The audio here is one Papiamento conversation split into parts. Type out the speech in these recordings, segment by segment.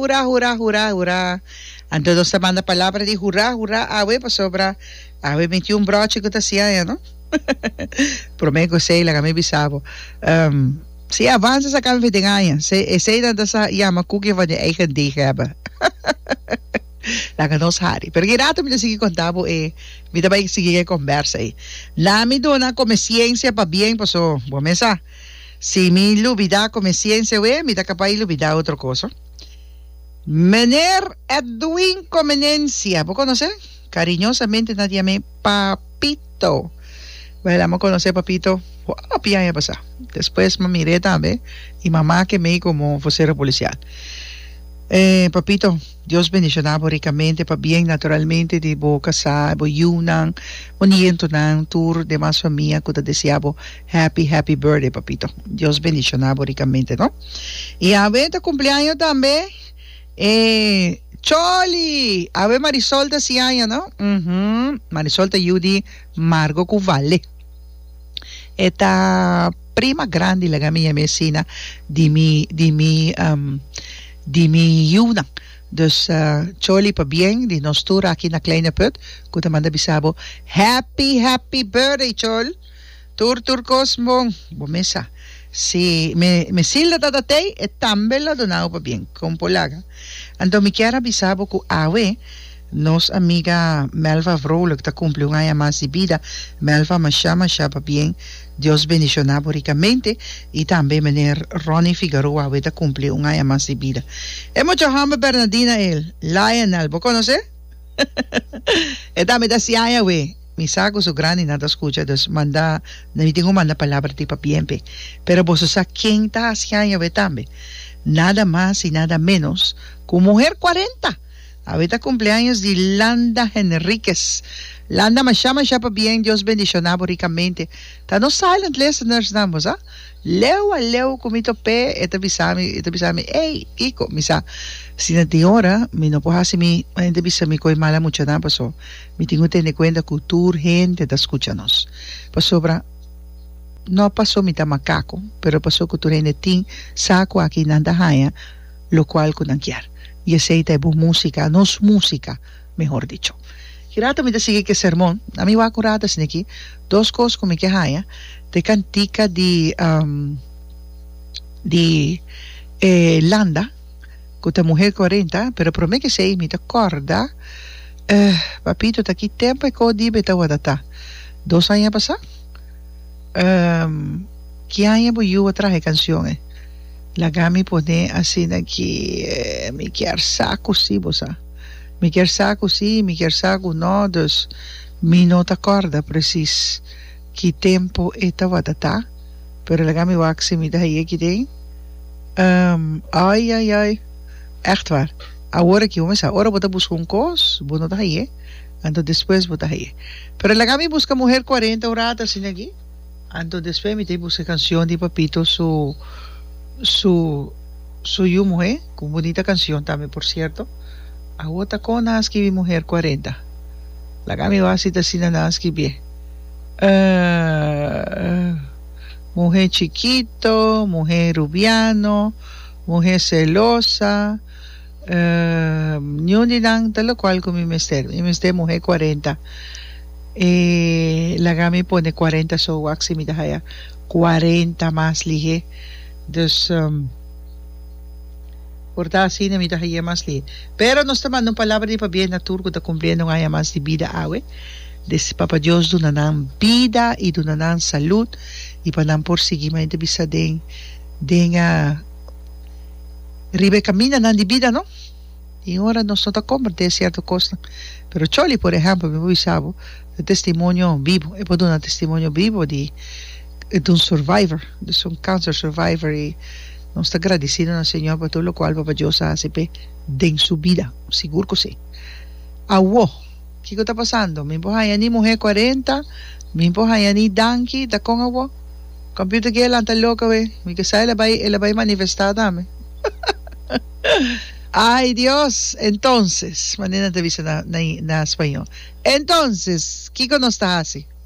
Hurá, hurá, hurá, hurá. Anto nos ta manda palabra di hurá, hurá awe pasobra awe mi tin un broche ku ta siaña, no? Promé ku sei laga mi bisabo. Um, si avansa sa kan vi den aña. Se, esei dan ta sa yama kuki van di eigen dig hebben. Laga nos hari. Pero kirato mi ta sigui konta bo e mi ta bai sigui e kombersa ei. Laat mi duna kome siensia pa bien paso bo mesa si mi lubida kome siensia we mi ta kapay lubida otro koso. Meneer Edwin Comenencia bo konos'e? Kariñosamente na di ame Papito. Bai lama konos'e Papito hopi aña pasa. Despues mi mir'e tambe i mama kem'ei komo fosero polisial. Eh Papito. Dios bendiciona bo ricamente pa bien naturalmente di bo casá, bo yiunan, bo nientonan, tur demas famia cu ta desea bo happy happy birthday papito. Dios bendiciona bo ricamente no. Y awe ta cumpleaño tambe e Choli, awe Marisol ta si aña no, uhmm Marisol ta yiu di Margo cu Vale. E ta prima grandi laga mi, mi asina di mi di mi di mi yiunan. Dus choli pa bien di nos tur aki na Kleine Put ku ta manda bisa bo happy happy birthday chol tur tur kos bon bo mes sa si mi mi silda ta ta tei e tambe lo dona bo pa bien kon po laga anto mi kier a bisa bo ku awe Nos amiga Melva Vrolijk ta cumpli un aña mas di bida. Melva masha masha pabien. Dios bendiciona bo ricamente. Y tambe meneer Ronnie Figaroa awe ta cumpli un aña mas di bida. E mucha homber Bernadina el, Lionel, bo conoce? e tambe ta así aña awe. Mi sa cu su grandi nan ta scucha dus manda na mi tin cu manda palabra di pabien p'e. Pero boso sa ken ta haci aña awe tambe. Nada mas y nada menos cu muher cuarenta! Awe ta cumpleaños di Landa Henriquez. Landa masha masha pa bien Dios bendiciona bo ricamente. Ta nos silent listeners nan bo sa. Leu a leu cu mi top'e e ta bisa mi e ta bisa mi ey Kiko mi sa si na tin ora mi no por haci mi ma hende bisa mi cu e mala mucha nan paso mi tin cu tene cuenta cu tur hende ta scucha nos pasobra no paso mi ta macaco pero paso cu tur hende tin sa cu aki nan ta haya lo cual cu nan kier, y esey ta e bo musica, nos musica, mehor dicho. Ki rato mi ta sigui cu e sermon, a mi wak un rato asina aki, dos cos cu mi ke haya, ta e cantica di di e Landa, cu ta Muher Cuarenta, pero prome cu esey mi ta corda, Papito, ta ki tempo e co di be ta wada ta? Dos aña pasa? Ehm ki aña bo yuo traha e cancion e? Laga mi pone asina ki mi kier sa cu si bo sa mi kier sa cu si y mi kier sa cu no dus mi no ta corda precies ki tempo e tawata ta pero laga mi wak si mi ta haya aki den ehm ay ay ay echtwaar awor aki bo mi sa ora bo ta busca un cos bo no ta haye Anto despues bo ta hei. Pero laga mi buska muher cuarenta ora ta asina aki. Anto despues mi ta buska cancion di papito su su su yu muhe cu bunita cancion tambe por cierto awo ta con nan a skibi muher cuarenta laga mi wak si ta asina nan a skibie muhe chikito muhe rubiano muhe celosa. Niun di nan ta lokual ku mi mester. Mi mester muhé kuarenta. E laga mi pone kuarenta so wak si mi ta haya kuarenta mas lihé. Dus por ta asina mi ta hay'é mas lihé. Pero nos ta manda un palabra di pabia na tur ku ta kumpliendo un aña mas di bida awe. Desi Papa Dios duna nan bida i duna nan salut i pa nan por sigui. Mi ta bisa den den. riba e kamindanan di bida no tin ora nos no ta komprendé sierto kosnan pero choli por ehèmpel mi por bisa bo e testimonio bibo e por duna testimonio bibo di di un survivor di un kanser survivor i nos ta gradisido na señor pa tur lokual Papa Dios a hasi p'e den su bida sigur ku si awo. Kiko ta pasando? Mi por haña ni muhé cuarenta, mi por haña ni danki, ta con awor? Computer ke a lanta lok awe, mi ke sa el a bai, el a bai manifestá tambe. Ay Dios! Entonces, manera nan ta bisa na, na, na spañol, Entonces, kiko nos ta haci?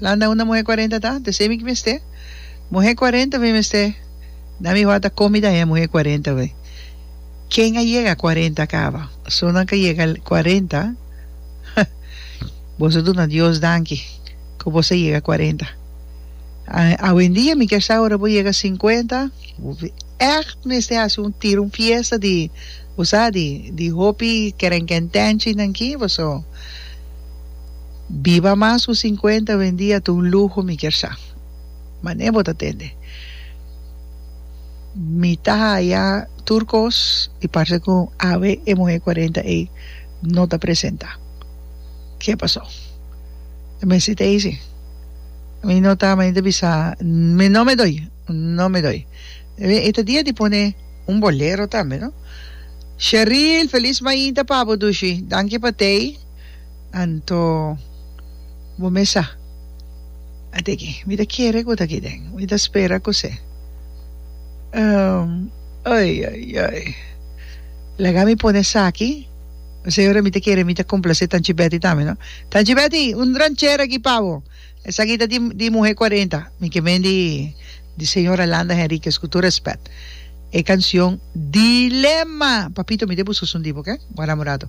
Landa unda muhé cuarenta ta, ta esei mi ki mester. Muhé cuarenta mi mester. Na mi wata con mi ta haya muhé cuarenta wey. Ken a yega cuarenta caba? Personanan cu a yega cuarenta, ha, boso a duna Dios danki cu boso a yega cuarenta. Awendia mi kier sa ora bo yega cincuenta, bo echt mester haci un tira un fiesta di, bo sa, di, di hopi kerenkentenchi nan ki, boso. Biba mas cu cincuenta wendia ta un luho mi kier sa. Mane bo ta tende? Mi ta haya tur cos y parce cu awe e muhe cuarenta ey no ta presenta. Ke paso? E mester ta eysi. Mi no ta mane ta bisa mi no me doy, no me doy. E ta dia di pone un bolero tambe no. Sheril, feliz mainta pa bo dushi. Danki pa tey. Anto bo mesa a tiki. Mi ta kere ku ta aki den. Mi ta spera ku se. Ai ai ai. Laga mi pone esaki. P'esei ora mi ta kere mi ta komplase Tanchi Beti tambe no. Tanchi Beti un ranchera aki pa bo. Esaki ta di muhe kuarenta. Mi ke men di señora Landa Henriquez ku tur rèspèt. E kansion Dilema. Papito mi ta e bususu un di bo oke. Bo a namorado.